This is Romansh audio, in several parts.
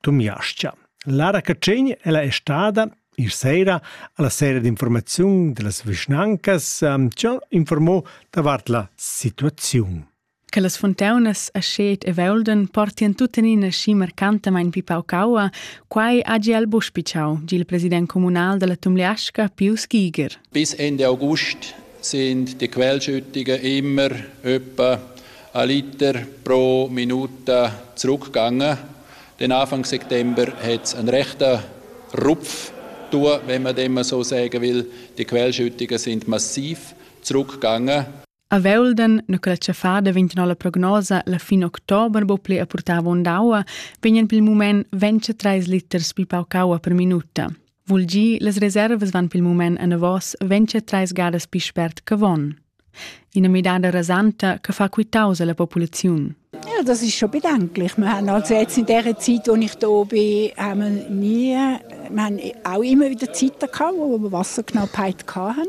Tumiascha. Lara Catschegn ella è stada ir sera alla sera d'informaziun dellas vischnancas ehm, ci ha informò davart la situaziun. Che las fontaunas a Schet e Veulden portien tuttenina schi marcantamain pi paucaua, quai ha Giel Buschpicau, il president comunal della Tumliasca, Pius Giger. Bis Ende August sind die Quellschüttigen immer etwa ein Liter pro Minuta zurückgegangen. Den Anfang September hat es einen rechten Rupf tun, wenn man dem so sagen will. Die Quellschüttungen sind massiv zurückgegangen. A Velden, na quella fa da 29 prognosa, la fin october bo ple a purtava ondaua, vegnan pel mument 23 liters pi paucaua per minuta. Vul gi, las reservas van pil mument enavos ventscha treis gadas pi spert che von. Ina midada rasanta che fa quitaus alla populaziun. Ja, das ist schon bedenklich. Wir haben also jetzt in der Zeit, wo ich hier bin, haben wir nie, wir haben auch immer wieder Zeiten gehabt, wo wir Wasserknappheit hatten.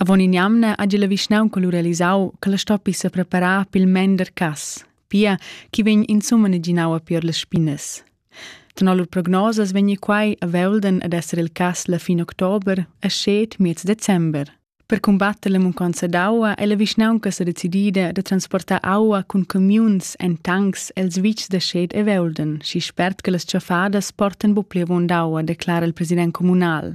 Avon in'jamna hagi la vischnaunca lu realisau che la stoppi sepreparar pil mender cass, pia ch'i vegn insumma naginau a pier las spinas. Tenor lur prognosas vegni quai a Velden ad esser il cass la fin october e scet miez december. Per combatter la munconza d'aua è la vischnaunca sa decidida da transportar aua cun camiuns en tancs els vitgs da scet e Velden, schi spert che las tschaffadas portan bu plievon d'aua, declara il president communal.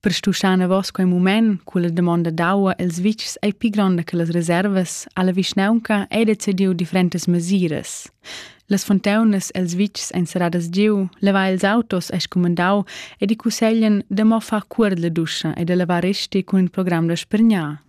Per stuschar anavos quei mument culla damonda d'aua els vitgs ei pli gronda che las reservas, ha la vischnaunca ei decidiu differentas mesiras. Las fontaunas els vitgs ein serradas giu, levar ils autos ei scumandau ed i cusseglien da mo far cuor la duscha e da lavar resti cun il program da spregnar.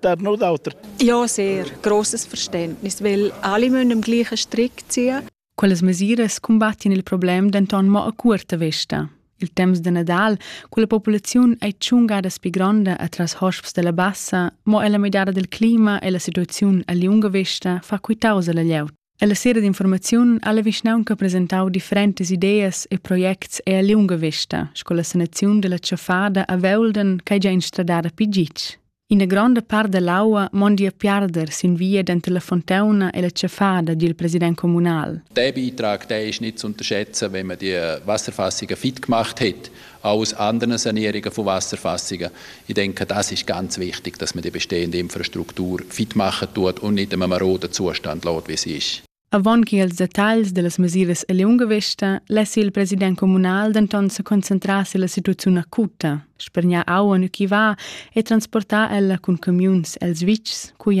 that no d'auter. Ja, sehr. Grosses Verständnis, weil alle müssen am gleichen Strick ziehen. Quelles mesiras combattien il problem denton mo a curta vista. Il temps de Nadal, quella populaziun è tschunga da pi gronda atras hosps della bassa, mo ella midada del clima e la situaziun a liunga vista fa quitausa la glieud. Ella sera d'informaziun ha la vischnaunca presentau differentas ideas e projects e a liunga vesta sco la sanaziun della tschaffada a Veulden ch'ei gia instradada pi gitg. Ina gronda part dell'aua mondi a piarder sin via denter la fontauna e la tschaffada dil president communal. Der Beitrag, der ist nicht zu unterschätzen, wenn man die Wasserfassungen fit gemacht hat Alles andere Sanierungen von Wasserfassungen. Ich denke, das ist ganz wichtig, dass man die bestehende Infrastruktur fit machen tut und nicht einem maroden Zustand lässt, wie sie ist. Avon che als detagls dellas mesiras a liunga vesta less il president communal denton se concentrar sulla situaziun acuta, spergnar aua nu chi va e transportar ella cun camiuns els vitgs cui